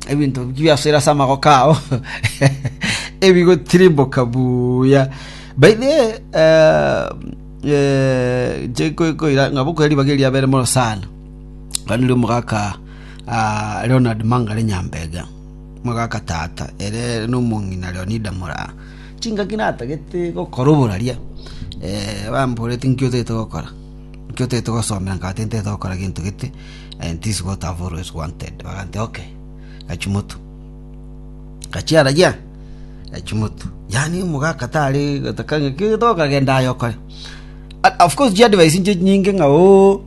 ebinto biasoire ase amagoko ao ebigotirimboka buya by the way, eh, eh, chekoira ng'a bokoira ribaga eriabere mono sana kandi ri omogaka ah, leonard mangare nyambega mogaka tata ere nomong'ina leonida moraa chingaki natagete gokora oboraria eh, bamborete nkio otagete gokora nkio otagete gosomera nkabate ntagete gokora gento gete and this is what I've always wanted bagante okay Gachumotu gachiara gia Gachumotu yani omogaka tari gotaka ng'aki tokagenda aye okore And of course chi advice inche nyinge ng'a oo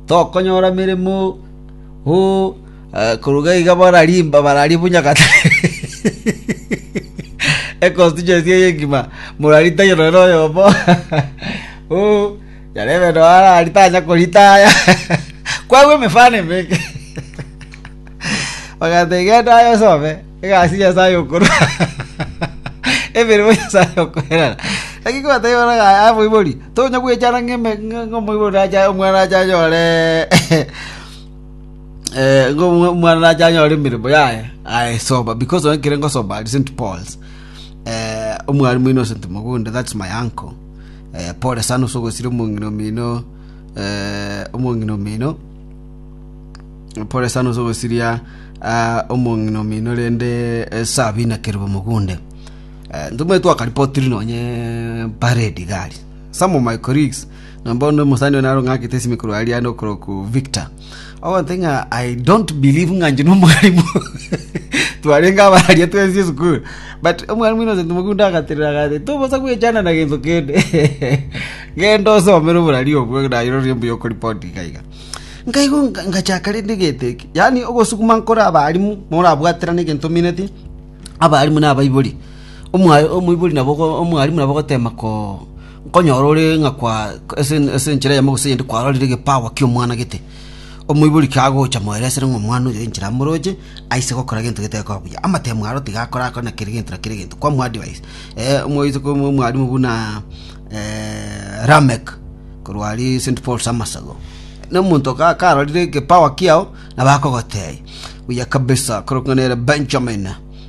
tokonyora meremo oo eh, koruga iga barari barari bunya gata econstituency eye engima moraritayo noyo oyomo oo Yarebe noara ari tanya korita aya, kwagwa emefano emenge. Bagata egenda aye osome egasi Nyasaye okorwa emeremo Nyasaye okoerera. Naki kobatebia bono ng'a amoibori tonya gwechana ng'eme ng'omoibori nacha omwana nacha anyore eh ng'omwana nacha anyore emeremo yaye aye soma because onye kere ngosoma ari St Paul's eh omwarimu oino St Mugunde that's my uncle Pore sana ase ogosira omong'ina omino, omong'ina omino, pore sana ase ogosiria omong'ina omino rende esabi inakerwe mogunde. Ntomae twakaripotiri nonye parade iga aria. Some of my colleagues, na bono omosani oyo narong'akete esimi korwa aria ande okoroku Victor. Ogoteba ng'a I don't believe ng'a inche nomwarimu twarenge abararia twensi esukuru but omwarimu Innocent Mogunda agaterera agati tobosa gwechana na gento kende genda osomere oborari obwo naye rirorio mbuya okoripoti iga iga nkaigu nga- ngachaka rende geteki yaani ogosukuma nkore abarimu morabwaterane egento omineti abarimu nabaibori Omwa- omoibori nabo ogo- omwarimu nabo ogotema ko Nkonyora ore ng'a ase enchera eyemo gose eyende kwarorire egepawa ki'omwana gete, omoibori kagocha moeresere ng'a omwana oyo enchera amoroche aise gokora gento getekoba buya. Amatemo aro tigakorakore na kera egento na kera egento, kwa moadvise. Omoiseke omwarimu buna Lameck korwa aria St. Paul's Amasago, na omonto karorire egepawa kiao nabo akogotebia, buya kabisa, korokwa nere Benjamin.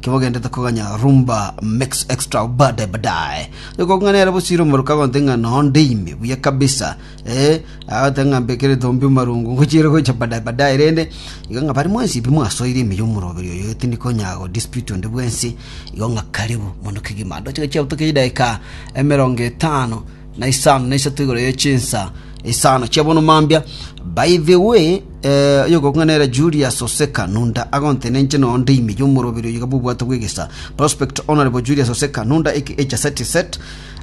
Kibogendete koganya rumba mix extra bade badaye. Niko ng'a nere bosire omoruka gonte ng'a nonde ime buya kabisa. Eh, agate ng'a mbekere tombi marungu ngochire gocha badaye badaye rende. Iga ng'a bari mwensi bi mwasoire ime y'omoroberi oyo etini konya go dispute onde bwensi. Igo ng'a karibu mono kegima. Ndoche gochia butoke idaika emerongo etano. na isano na isato igoro ye chinsa isano chi'obonwa mambia. By the way, eh, oyogokong'a nere Julius Oseka Nunda agonte nenche noo ndeime y'omoroberi oyiga bw'obwato bw'egesa. Prospect Honorable Julius Oseka Nunda aka Echasati Set,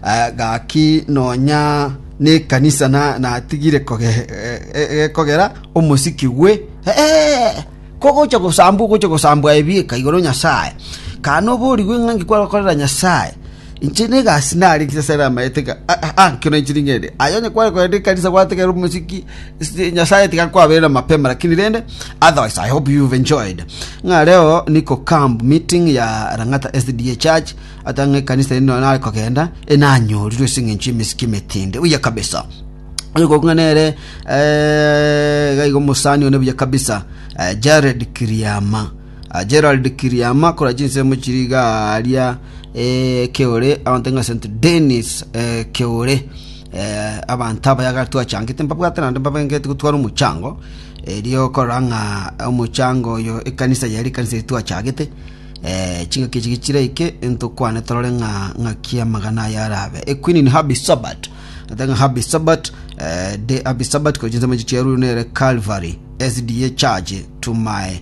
eh, gaki nonya nekanisa na natigire koge, eh, eh, gekogera omosiki gwe eh, eh, kogocha gosambwa ogocha gosambwa ebieka igoro Nyasaye kana oborigwe ng'a nki kwagokorera Nyasaye Inche negasi narenge ase are amaeteka anke na inche ningende. Aye onye kware kogenda ekanisa gwategerera omosiki Nyasaye tiga kwabera mapema lakini rende otherwise I hope you've enjoyed. Ng'a reo niko camp meeting ya Lang'ata SDA Church ata ng'a ekanisa ende nonye nare kogenda enanyorirwe ase eng'encho y'emesiki emetende. Buya kabisa. Oyo kong'a nere eh, gaiga omosani one buya kabisa eh, Jared Kiriama. Gerald Kiriama akora chinsemo chiri iga aaria eh, Keore, abanto ng'a St. Denis eh, Keore. Eh, abanto aba yaga twachangete mbabwate naende mbabengete gotwara omochango erio okorora ng'a omochango oyo ekanisa yari ekanisa eye twachagete eh, chingaki echi gichiraike ntokwane torore ng'a ng'aki amagana aya arabe equinin habi sabat ata ng'a habi sabat eh, de habi sabat kora chinsemo echi chiarure nere calvary sda church to my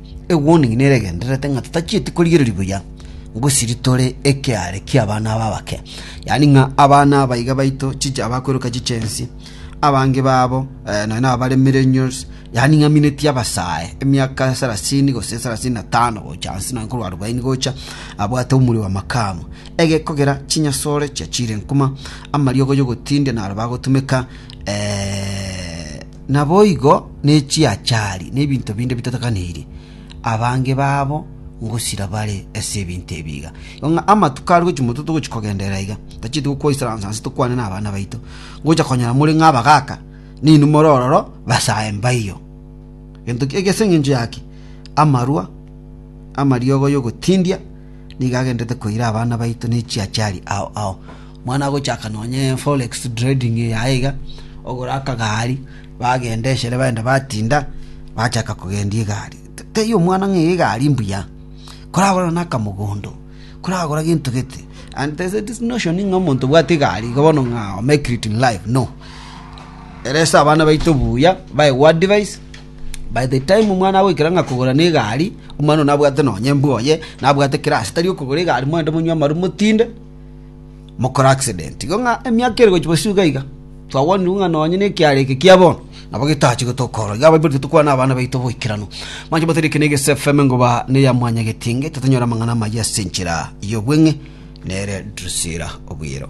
Egwonigini neregendererete ng'a totachieti korigereria buya ngosiri tore ekeare ki'abana aba abake, yaani ng'a abana aba iga baito chiche abakweroka chichensi, abange babo nonya nababare millennials, yaani ng'a mineti abasae emiaka sarasini gose sarasini na tano gocha ase nonya korwa arubaini gocha, abwate omori wa makamu. Egekogera chinyasore chia chirenkuma, amariogo y'ogotindia naro bagotumeka Naboigo ne chiachari na ebinto binde bitatakanirie, abange babo ngosira bare ase ebinto ebi iga. Igo ng'a amatuko are gochia moto togochia kogenderera iga, tachieti gokwoisaransa nse tokwane nabana baito, ngocha konyora more ng'a abagaaka, na inwe more ororo basae mbaio. Gento kiakia ase engencho yake, amarwa amariogo y'ogotindia nigo agendererete koira abana baito ne chiachari ao ao. Mana gochaka nonya forex trading yaye iga, ogora akagari, bagenda eshere baende batinda, bachaka kogendia egari. Taiyo omwana ng'a egari mbuya, koragore nonya akamogondo, koragora gento gete. And there is this notion ng'a omonto obwate egari iga bono ng'a o make it in life, no. Ere ase abana baito buya, baye go advise, by the time omwana agoikera ng'a kogora na egari, omwana oyio nabwate nonya embwa oye, nabwate kera ase tari okogora egari, moende monywe amaru motinde. mokore accident igo ng'a emiaka ere gochia bosio iga iga twagwanirwe ng'a nonye na ekiara eke kia bono nabo getache gotokora iga abaiborete tokwana na abana baito boikeranu mwanche motari eke na egese fm ngoba ne ya mwanyagetinge tatonyora amang'ana amayia ase enchera y'obweng'e nere Drusilla Obiero.